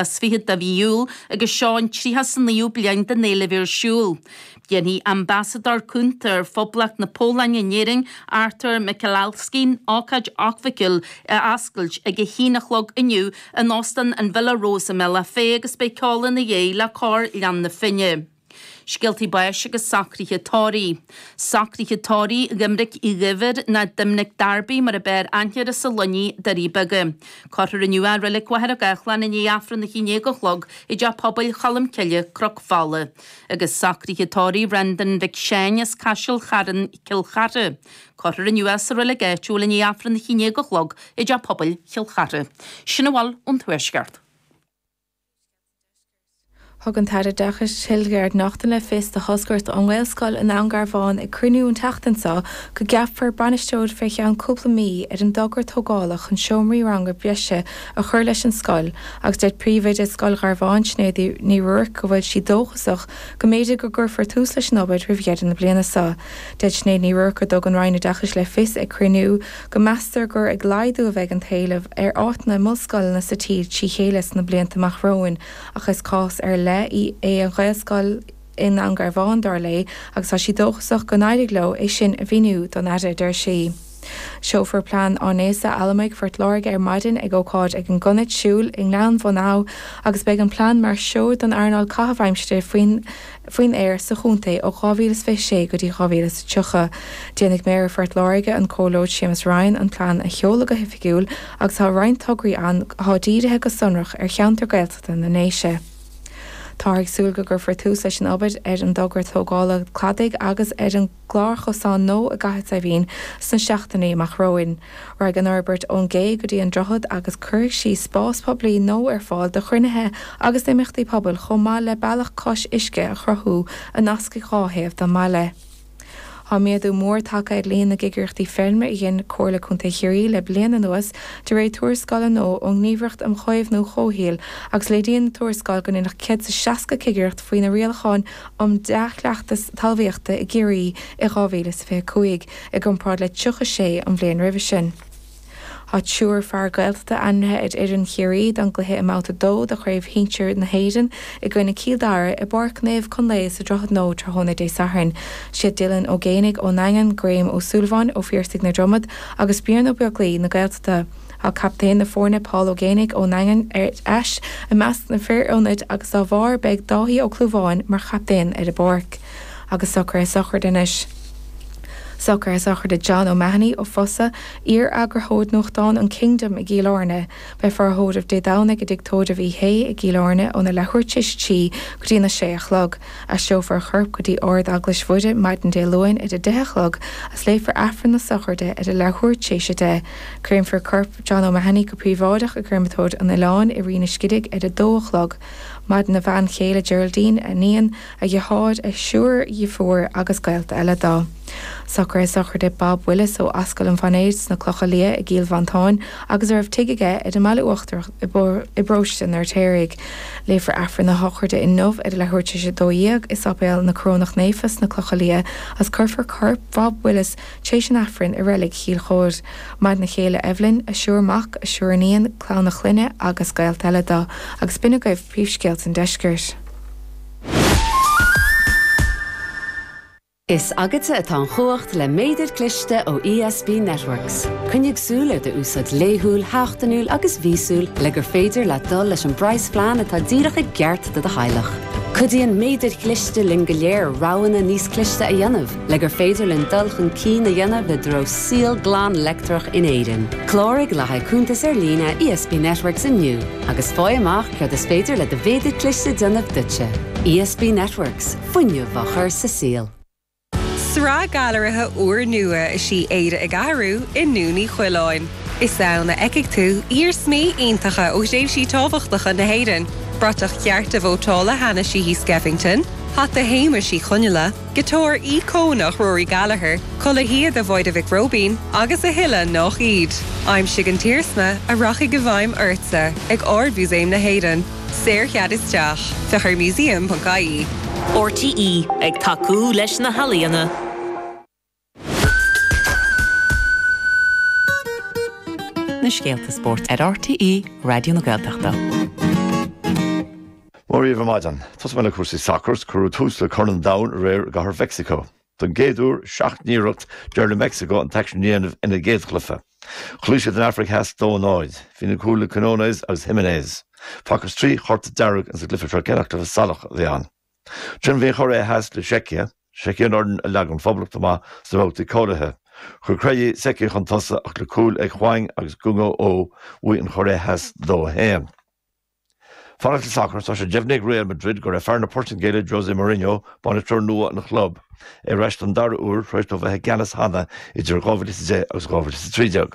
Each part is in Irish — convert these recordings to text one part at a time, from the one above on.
is fichead de mhí Iúil agus seo an tríocha 's naoú bliain den fhéile ar siúl. Déanfaidh Ambasadóir cúnta ar Phoblacht na Pólainne in Éirinn, Artur Michalski, ócáid acmhainniúil a oscailt ag a haon a chlog inniu in Óstán an Villa Rose i mBéal Átha Féa agus beidh ceol ina dhiaidh le Cór Ghleann na Finne. Scéaltaí báis agus socruithe tórraimh. Socruithe tórraimh Dhoimnic Uí Dhuibhir nó Doimnic Darby mar ab fhearr aithne air as an Luinnigh Doirí Beaga. Cuirfear inniu é i reilig Mhachaire Gathláin i ndiaidh Aifreann a haon déag a chlog i dteach pobail Cholm Cille, Cnoc Fola. Agus socruithe tórraimh Bhrendan Mhic Sheáin as Caiseal Charn Chill Chartha. Cuirfear inniu é sa reilig áitiúil i ndiaidh Aifreann a haon déag a chlog i dteach pobail Chill Chartha. Sin a bhfuil ón Tuaisceart. Thug an tAire Oideachais Hildegarde Naughton le fios do thoscaireacht ón nGaelscoil i nDún Garbhán ag cruinniú an tseachtain seo go gceapfar bainisteoir fé cheann cúpla mí ar an dtogra tógála chun seomraí ranga breise a chur leis an scoil agus deir príomhoide Scoil Gharbháin Sinéad Ní Ruairc go bhfuil sí dóchasach go mb'fhéidir go gcuirfear tús leis an obair roimh dheireadh na bliana seo. Deir Sinéad Ní Ruairc go dtug an Roinn Oideachais le fios ag cruinniú go meastar gur ag laghdú a bheidh an t-éileamh ar áiteanna i mbunscoileanna sa tír trí chéile sna blianta amach romhainn ach is cás ar leith í an Ghaelscoil i nDún Garbhán, dar léi, agus tá sí dóchasach gur éirigh leo é sin a mhíniú don Aire, a deir sí. Seolfar plean áineasa allamuigh Phort Láirge ar maidin ag ócáid ag an gconair Siúil i nGleann Mhachan agus beidh an plean mar threoir don earnáil caitheamh aimsire faoin faoin aer sa chontae ó 2026 go dtí 2030. Déanfaidh Méara Phort Láirge, an Comhairleoir Séamus Ryan, an plean a sheoladh go hoifigiúil agus tá roinnt tograí ann atá dírithe go sonrach ar cheantar Gaeltachta na nDéise. Táthar ag súil go gcuirfear tús leis an obair ar an dtogra tógála cladaigh agus ar an. gclárchosán nua i gCathair Saidhbhín sna seachtainí amach romhainn. Raghaidh an fhorbairt ón gcé go dtí an droichead agus cuirfidh sí spás poiblí nua ar fáil do chruinnithe agus d'imeachtaí pobail chomh maith le bealach cois uisce a chruthú a nascfaidh dhá thaobh don mbaile. Tá méadú mór tagtha ar líon na gcigireachtaí feirme a dhein Comhairle Contae Chiarraí le bliain anuas de réir tuarascála nua ón nGníomhaireacht um Chaomhnú Comhshaoil agus léiríonn an tuarascáil gur deineadh 160 cigireacht faoi na rialacháin um Dhea-Chleachtas Talmhaíochta i gCiarraí i 2025 i gcomparáid le 36 an bhliain roimhe sin. Tá triúr fear Gaeltachta ainmnithe ar fhoireann Chiarraí don gcluiche i mBabhta 2 de Chraobh Shinsir na hÉireann i gcoinne Cill Dara i bPáirc Naomh Conlae sa Droichead Nua tráthnóna Dé Sathairn. Is iad Dylan Ó Géanaigh ón nDaingean, Graeme Ó Súilleabháin ó Phiarsaigh na Dromoda agus Brian Ó Beaglaoi na Gaeltachta. Tá captaen na foirne Paul Ó Géibheannaigh ón nDaingean ar ais i measc na fir ionaid agus dá bharr beidh Dáithí Ó Clúmháin mar chaptaen ar an bpáirc agus socruithe sochraide anois. Socruithe sochraide John O'Mahony ó Fosadh, iar eagarthóir nuachtáin an Kingdom i gCill Airne. Beifear á thórramh Dé Domhnaigh i dTigh Tórraimh Uí Shé i gCill Airne óna leathuair tar éis a trí go dtí na sé a chlog. Aistreofar a chorp go dtí Ard Eaglais Mhuire maidin Dé Luain ar a deich a chlog is léifear Aifreann na sochraide ar a leathuair tar éis a de Créamfar corp John O'Mahony go príobháideach i gCréamatóir an Oileáin i Rinn an Scidígh ar a dó a chlog. Maireann a bhean chéile Geraldine, a iníon, a dheartháir, a thriúr deirfiúr agus gaolta eile dó. Socruithe sochraide Bob Willis ó Ascaill an Mhainéir sna Clocha Liath i gCill Mhantáin agus a raibh tigh aige ar an mBaile Uachtarach i bParóiste an Fheirtéaraigh. Léifear Aifreann na sochraide inniu ar a leathuair tar éis a dó dhéag i Sáipéal na Corónach Naofa sna Clocha Liath is cuirfear corp Bhob Willis Tréis an Aifrinn i reilig Chill Chomhaid. Maireann a chéile Eibhlín, a thriúr mac, a thriúr iníon, clann a chlainne agus gaolta eile dó, agus b'in agaibh príomhscéalta an deiscirt. Is agatsa atá an chumhacht le méadar cliste ó ESB Networks. Coinnigh súil ar do úsáid laethúil, sheachtainiúil agus mhíosúil le gur féidir leat dul leis an bpraghasphlean atá díreach i gceart do do theaghlach. Cuidíonn méadair chliste linn go léir roghanna níos cliste a dhéanamh. Le gur féidir linn dul chun cinn a dhéanamh i dtreo saol glan leictreach in Éirinn, cláraigh le haghaidh cuntas ar líne ESB Networks inniu agus faigh amach céard is féidir le do mhéadar cliste a dhéanamh duitse. ESB Networks, fuinneamh á chur sa saol. Sraith gailearaithe úrnua is í Éire ag Athrú i nDún Uí Choileáin. Is ann a fheicfidh tú iarsmaí iontacha ó thréimhsí tábhachtacha na hÉireann, bratach chearta vótála Hanna Sheehy Skeffington, hata Shéamais Uí Chonghaile, Giotár íocónach Rory Gallagher, culaith shíoda Mháire Mhic Róibín agus a thuilleadh nách iad. Aimsigh an t-iarsma a rachaidh i bhfeidhm ortsa ag Ard-Mhúsaem na hÉireann. Saorchead isteach. Féach ar museum.ie. RTÉ ag tacú leis na healaíona. na scéalta spóirt ar RTÉ Raidió na Gaeltachta. Mora daoibh ar maidin. Tosóidh mé le cúrsaí sacair is cuireadh tús le Corn an Domhain aréir i gcathair Mheicsiceo. Don gcéad uair i seacht n-iarracht, d'éirigh le Meicsiceo an t-aicsean a dhéanamh ina gcéadchluife. Chloígh siad an Afraic Theas dó a náid. Bhí na cúil le Quinones agus Jiménez. Facthas trí chárta dearg ins an gcluife seo cé nach cluife salach a bhí ann. D'imir an Chóiré Theas le Seicia, Seicia an fhoireann a leag an Phoblacht amach sna babhtaí cáilithe. Chuir Krejčí Seicia chun tosaigh ach le cúil ag Hwang agus Gyu Oh bhuaigh an Chóiré Theas 2, 1. Fanacht le sacar, tá sé deimhnithe ag Real Madrid gurb é fear na Portaingéile José Mourinho, bainisteoir nua an chlub, ar ais don dara uair tar éis dó bheith i gceannas cheana idir 2010 agus 2013.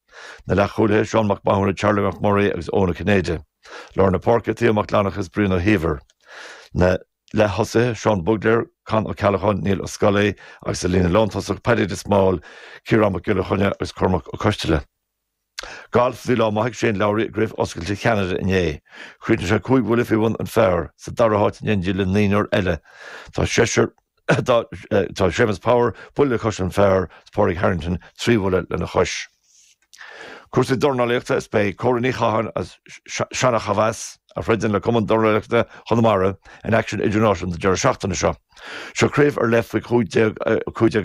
Na leath-chúlaithe, Seán Mac Mathúna, Charlie Mac Muirí agus Eoin Ó Cinnéide. Lár na páirce, Theo Mac Fhlannchadha is Brian Ó hÍomhair. Na leath-thosaithe, Seán Bugler, Con Ó Ceallacháin, Niall Ó Scolaí agus sa líne lántosach, Paddy de Smál, Ciarán Mac Giolla Chainnigh agus Cormac Ó Coisteala. Galf, Bhí lá maith ag Shane Lowry i gCraobh Oscailte Cheanada inné. Chríochnaigh sé cúig bhuille faoi bhun an phar, sa dara háit in éindí le naonúr eile. Tá seisear Tá Séamus Power, buille le cois an phar, is Pádraig Harrington, trí bhuille lena chois. Cúrsaí dornálaíochta is beidh Cora Ní Chatháin as Seanachomheas, a throideann le Cumann Dornálaíochta Chonamara, in aicsean idirnáisiúnta an deireadh seachtaine seo. Seo craobh ar leith faoi 15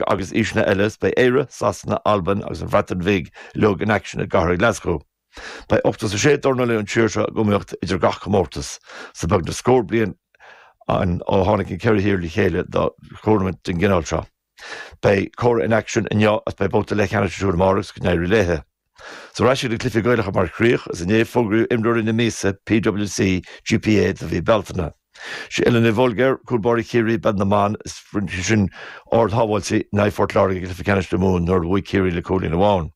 agus aoiseanna eile is beidh Éire, Sasana, Albain agus an Bhreatain Bhig uilig in aicsean i gcathair Ghlaschú. Beidh ochtó is a sé dornálaí ón tír seo ag iomaíocht idir gach comórtas is tá beagnach scór bliain ann ó tháinig na ceithre thír le chéile do thurnaimint den gcineál seo. Beidh Cora in aicsean inniu agus beidh babhta leathcheannais siúd amárach agus go n-éirí léi. Is ar ais chuig na cluichí Gaelacha mar chríoch, is inné a fógraíodh imreoirí na míosa, PWC, GPA, do mhí Bealtaine. Is í Ellen Ní Bhuilgéir, cúl báire Chiarraí, i bpeil na mban is rinne sise ardshábháiltí in aghaidh Phort Láirge i gcluiche ceannais na Mumhan nuair a bhuaigh Ciarraí le cúilín amháin.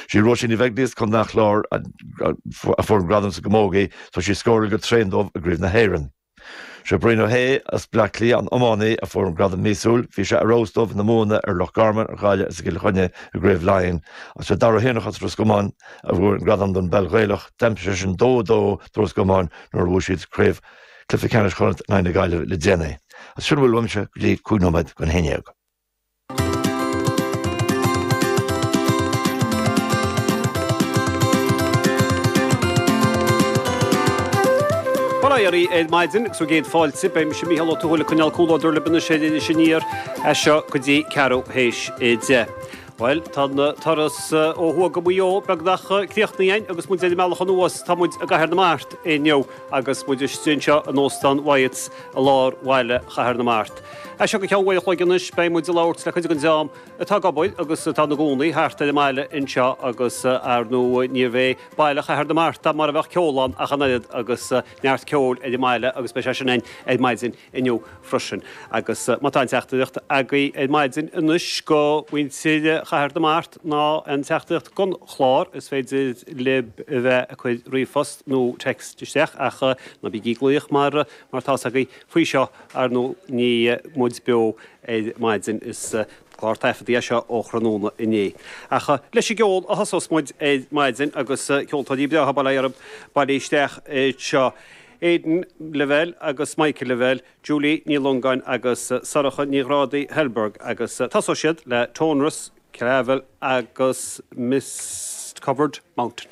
Sí Róisín Ní Bheaglaoich as Contae an Chláir a fuair an gradam sa gcamógaí tá sí ag scóráil go tréan dóibh i gcraobh na hÉireann. Sé Brian Ó hAodha as Bleá Cliath an iománaí a fuair an gradam míosúil, bhí sé ar fheabhas dóibh ina mbuanna ar Loch Garman, ar Ghaillimh is i gCill Chainnigh i gcraobh Laighean. Agus sé Dara Ó hÉanacháin as Ros Comáin a fuair an gradam don bpeil Ghaelach, d'aimsigh seisean 2-2 do Ros Comáin nuair a bhuaigh siad craobh cluiche ceannais Chonnacht in aghaidh na Gaillimhe le déanaí. Is sin a bhfuil uaimse go dtí cúig nóiméad don haon déag. Bail ó Dhia oraibh ar maidin agus bhur gcéad fáilte, beidh mise, Mícheál Ó Tuathail, ag coinneáil comhluadar libh anseo ar Iris Aniar as seo go dtí ceathrú théis a deich. Bhuel, tá an turas ó thuaidh go Maigh Eo beagnach críochnaithe againn agus muid ar an mbealach anuas, tá muid i gCathair na Mart inniu agus muid istigh anseo in Óstán Wyatt i lár bhaile Chathair na Mart. As seo go ceann uair a chloig anois beidh muid ag labhairt le cuid den dream atá ag obair agus atá ina gcónaí thart ar an mbaile anseo agus, ar ndóigh, níorbh é Baile Chathair na Mart mara mbeadh ceol ann ach an oiread agus neart ceoil ar an mbaile agus beidh sé sin ann ar maidin inniu freisin. Agus má tá aon teachtaireacht agaibh ar maidin anois do mhuintir Chathair na Mart ná aon teachtaireacht don chlár is féidir libh a bheith ag cur ríomhphost nó text isteach ach ná bígí ag glaoch mar mar tá 's agaibh Faoi seo, ar ndóigh, níl muid beo ar maidin is clár taifeadta é seo ó thráthnóna inné. Ach leis an gceol a thosós muid ar maidin agus ceoltóirí breátha breátha ab ea bailithe isteach seo, Aidan Lavelle agus Michael Lavelle, Julie Ní Longáin agus Sorcha Ní Ghrádaigh Thalberg agus tosóidh siad le Tonras, Clavel agus Mist-Covered Mountain.